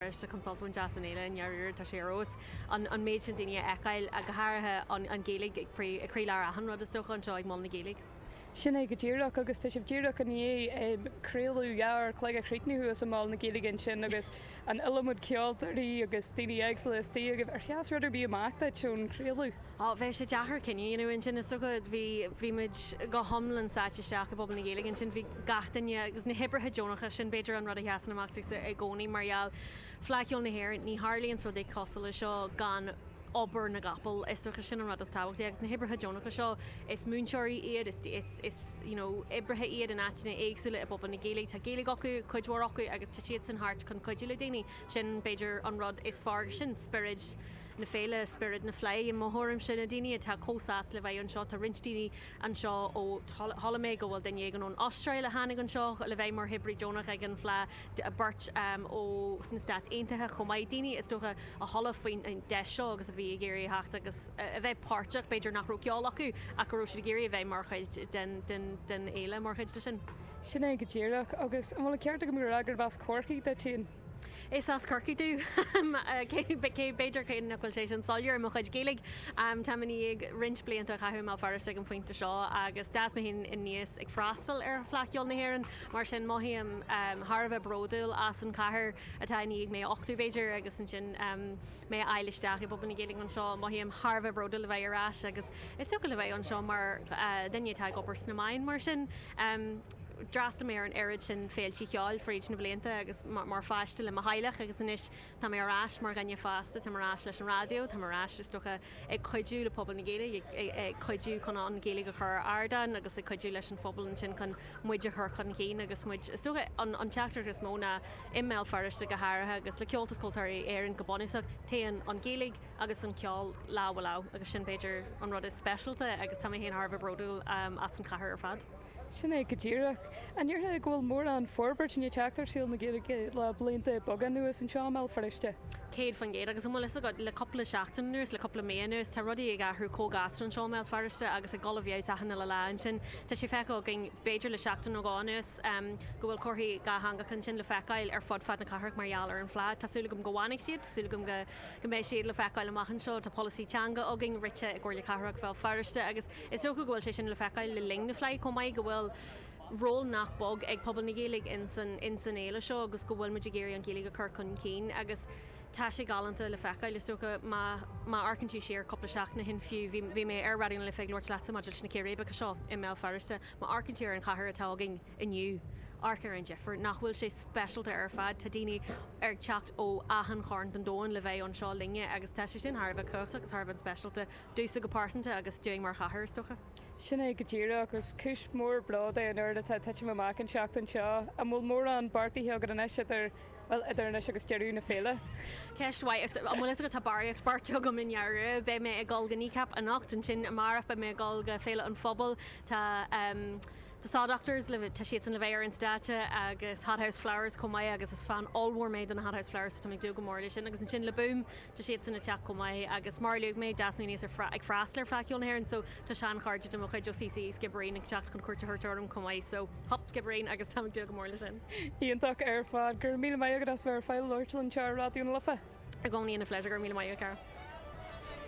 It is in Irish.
arsa Consulta Mhaine deas an fhéile i ndáiríre, tá sé ar fheabhas an méid sin daoine a fheiceáil, go háirithe an Ghaeilge ag croílár achan rud is dócha anseo ag Mol na Gaeilge. Sin é go díreach, agus tá sibh díreach i ndiaidh craoladh dhá uair an chloig a chríochnú thuas i Mol na Gaeilge ansin agus an iliomad ceoltóirí agus daoine éagsúla istigh agaibh. Ar sheas rud ar bith amach duit ón chraoladh? Á, bheadh sé deacair cinneadh a dhéanamh ansin, is dócha. Bhí, bhí muid go hiomlán sáite isteach i bpobal na Gaeilge ansin. Bhí gach duine, agus na hoibrithe deonacha, sin b'fhéidir an rud a sheasann amach domhsa i gcónaí mar gheall, Fleadh Cheoil na hÉireann, ní tharlaíonns rudaí cosúil le seo gan obair na gcapall, is dócha sin an rud is tábhachtaí. Agus na hoibrithe deonacha seo, is múinteoirí iad, is, is, is, you know, oibrithe iad in áiteanna éagsúla i bpobal na Gaeilge, tá Gaeilge acu, cuid mhór acu, agus tá siadsan thart chun cuidiú le daoine. Sin b'fhéidir an rud is fearr, agus sin spiorad. na féile, spiorad na fleidhe i mo thuairimse. Na daoine atá chomh sásta le bheith anseo, tá roinnt daoine anseo ó, chuala mé go bhfuil duine éigin ón Astráil a tháinig anseo le bheith mar oibrí deonach ag an fleá, beirt ó sna Stáit Aontaithe chomh maith, daoine is dócha a chuala faoin deis seo agus a bhí ag iarraidh a theacht agus a bheith páirteach, b'fhéidir nach raibh ceol acu ach go raibh siad ag iarraidh a bheith mar chuid den fhéile, mar chuid de sin. Sin é go díreach. Agus an bhfuil an ceart agam gur as Corcaigh duit féin? Is as Corcaigh mé, b'fhéidir, cé nach bhfuil sé sin soiléir i mo chuid Gaeilge. Táim i ndiaidh roinnt blianta a chaitheamh i mBéal Feirste ag an phointe seo agus d'fhás mé féin aníos ag freastal ar Fleadh Cheoil na hÉireann, mar sin mothaím thar a bheith bródúil as an chathair atá i ndiaidh mé a uchtú, b'fhéidir, agus ansin mé a fháil isteach i bpobal na Gaeilge anseo. Mothaím thar a bheith bródúil a bheith ar ais agus is dócha a bheith anseo mar dhuine atá ag obair sna meáin, mar sin. D'fhreastal mé ar an oiread sin féilte cheoil fríd na blianta agus mar pháiste le mo theaghlach agus anois tá mé ar ais mar dhuine fásta, táim ar ais leis an raidió, táim ar ais, is dócha, ag cuidiú le pobal na Gaeilge, ag cuidiú chun an Ghaeilge a chur ar ardán agus ag cuidiú leis an phobal ansin chun muid a chur chun cinn agus muid, is dócha, an teachtaireacht is mó ná i mBéal Feirste go háirithe agus le Comhaltas Ceoltóirí Éireann go bunúsach, téann an Ghaeilge agus an ceol lámh i lámh agus sin b'fhéidir an rud is speisialta agus tá mé féin thar a bheith bródúil as an chathair ar fad. Sin é go díreach. An ndéarfá go bhfuil mórán forbairt i ndiaidh teacht ar shaol na Gaeilge le blianta beaga anuas anseo i mBéal Feirste? Céad faoin gcéad. Agus an bhfuil fhios agat, le cupla seachtain anuas, le cupla mí anuas, tá rudaí ag athrú comh gasta anseo i mBéal Feirste agus ag dul i bhfeabhas achan uile lá ansin. Tá sé feicthe againn, b'fhéidir le seachtain nó dhó anuas, go bhfuil comharthaí dhátheangacha ansin le feiceáil ar fud fad na cathrach mar gheall ar an Fleadh. Tá súil agam go bhfanfaidh siad, tá súil agam go mbeidh siad le feiceáil amach anseo. Tá polasaí teanga againn rite i gComhairle Cathrach Bhéal Feirste agus. Is dócha go bhfuil sé sin le feiceáil le linn na Fleidhe chomh maith, go bhfuil ról nach beag ag pobal na Gaeilge ins an fhéile seo agus go bhfuil muid ag iarraidh an Ghaeilge a chur chun cinn agus tá sé galánta le feiceáil. Is dócha má amharcann tú siar cúpla seachtain ó shin fiú, bhí mé ar Raidió na Life ag labhairt leatsa maidir leis na círéibeacha seo i mBéal Feirste, má amharcann tú ar an chathair atá againn inniu, amharc ar an difir. Nach bhfuil sé speisialta ar fad. Tá daoine ag teacht ó achan chearn den domhan le bheith anseo linne agus tá sé sin thar a bheith cumhachtach agus thar a bheith speisialta. domhsa go pearsanta agus dúinn mar chathair, is dócha. Sin é go díreach. Is cúis mhór bróid é an oiread atá ag titim amach an tseachtain seo. An bhfuil mórán beartaithe agat anois idir, bhuel, idir anois agus deireadh na féile? Ceist mhaith. Is, an bhfuil fhios agat, tá barraíocht beartaithe agam i ndáiríre. Beidh mé ag dul go Kneecap anocht, ansin amárach beidh mé ag dul go Féile an Phobail, tá ehm The Saw Doctors le, tá siadsan le bheith ar an stáitse agus Hothouse Flowers chomh maith agus is fan ollmhór mé de na Hothouse Flowers so tá mé ag dúil go mór le sin agus ansin Le Boom, Tá siadsan ag teacht chomh maith agus mar a luaigh mé d'fhás mé aníos ag freastal ar Fleadh Cheoil na hÉireann so tá seanchairde de mo chuid ó CCÉ Sciobairín ag teacht chun cuairt a thabhairt orm chomh maith so hup Sciobairín agus tá mé ag dúil go mór le sin. Iontach ar fad. Go raibh míle maith agat as bheith ar fáil le labhairt linn anseo ar Raidió na Life. I gcónaí ina phléisiúr. Go raibh míle maith agat, a chara.